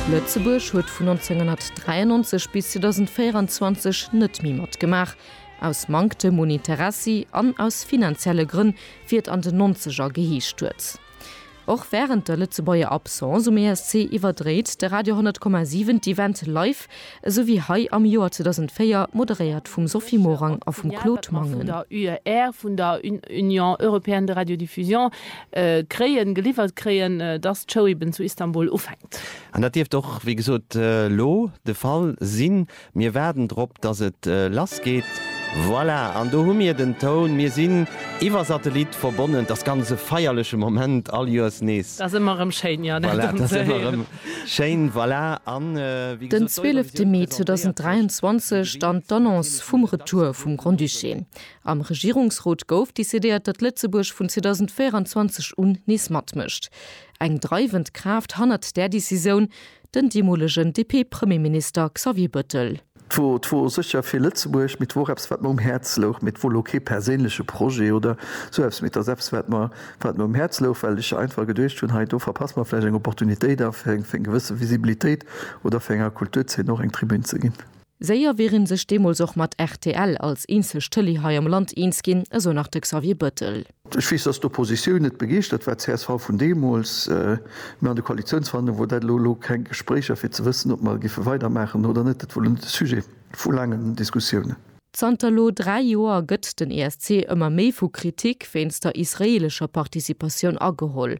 Lëtzebuerg huet vun 1993 bis 2024 net méi matgemaach, aus Manktem un Interessi an aus finanzielle Grënn, wéi et an den Nonzeger geheescht huet. Och wärend der Lëtzebuerger Absence um ESC iwwerdréit de Radio 100,7 d'Event live esou wéi hei am Joer 2004, moderéiert vum Sophie Morang a vum Claude Mangen. An d'Infokanner vun der UER, vun der Union Européenne de Radiodiffusion, kréien, geliwwert kréien, dass d'Show eben zu Istanbul ufänkt. An dat dierft och, wéi gesot, elo de Fall sinn. Mir waarden drop, dass et lass geet. Voilà, an do hu mir den Toun. Mir sinn iwwer Satellit verbonnen. T'ass ganz e feierleche Moment, all Joers nees. T'ass ëmmer erëm schéin, jo, dat erëm ze héieren. Schéin, voilà, an wéi Den gesot, d'Eurovision 12 Mee presentéiert sech 2023, dann d'Annonce vum Retour vum Grand-Duché. Am Regierungsrot gouf decidéiert, datt Lëtzebuerg vun 2024 un nees matmécht. Eng dreiwend Kraaft hannert där Decisioun, den deemolegen DP-Premierminister Xavier Bëttel. 't wor secher fir Lëtzebuerg, mee 't wor och eppes wat mer um Häerz louch, mee 't wor lo kee perséinleche Projet oder sou eppes, mee 't ass eppes wat mer wat mer um Häerz louch, well ech einfach geduecht hunn, hei do verpasse mer vläicht eng Opportunitéit a fir eng fir eng gewësse Visibilitéit oder fir enger Kulturzeen och eng Tribün ze ginn. Séier wier een sech deemools och mat rtl als eenzeg Tëlee hei am Land eens ginn, esou nach de Xavier Bettel. Ech weess, dass d'Oppositioun net begeeschtert war, csv vun deemools, mä an de Koalitionsverhandlungen wor dat elo, elo keng Gespréicher, fir ze wëssen, ob mer géife weidermaachen oder net. Dat wor elo net de Sujet vu laangen Diskussiounen. Zanter elo dräi Joer gëtt den ESC ëmmer méi vu Kritik wéinst der israeelescher Participatioun ageholl.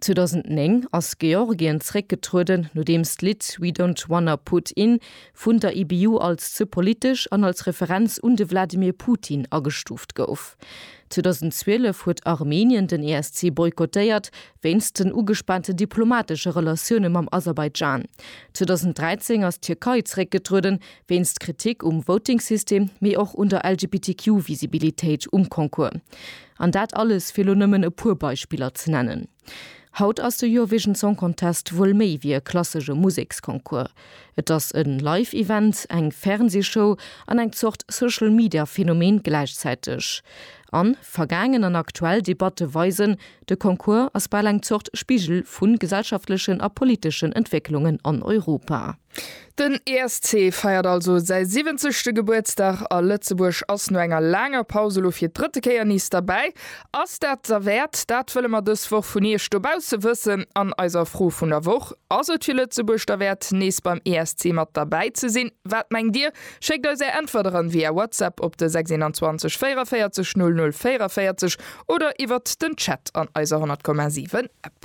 2009 ass Georgien zeréckgetrueden, nodeems d'Lidd We Don't Wanna Put In vun der IBU als ze politesch an als Referenz un de Wladimir Putin agestuuft gouf. 2012 huet Armenien den ESC boykottéiert, wéinst den ugespaante diplomatesche Relatioune mam Aserbaidschan. 2013 ass d'Tierkei zeréckgetrueden, wéinst Kritik um Voting-System, mee och un der LGBTQ-Visibilitéit um Concours. An dat alles, fir lo nëmmen e puer Beispiller ze nennen. Haut ass de Eurovision Song Contest wuel méi wéi e klassesche Museksconcours. Et ass e Live-Event, eng Fernsee-Show an eng Zort Social-Media-Phänomen gläichzäiteg. An vergaangen an aktuell Debatte weisen, de Concours ass bal eng Zort Spigel vu gesellschaftlechen a politeschen Entwécklungen an Europa. Den ESC feiert also säi siwwenzegste Gebuertsdag a Lëtzebuerg ass no enger laanger Paus elo fir d'drëtte Kéier nees derbäi. Ass dat derwäert? Dat wëlle mer dës Woch vun Iech dobausse wëssen an eiser Fro vun der Woch. Ass et fir Lëtzebuerg derwäert, nees beim ESC mat derbäi ze sinn? Wat mengt Dir? Schéckt eis Är Äntwert eran via WhatsApp op de 621 44 00 44 oder iwwert den Chat an eiser 100,7 App.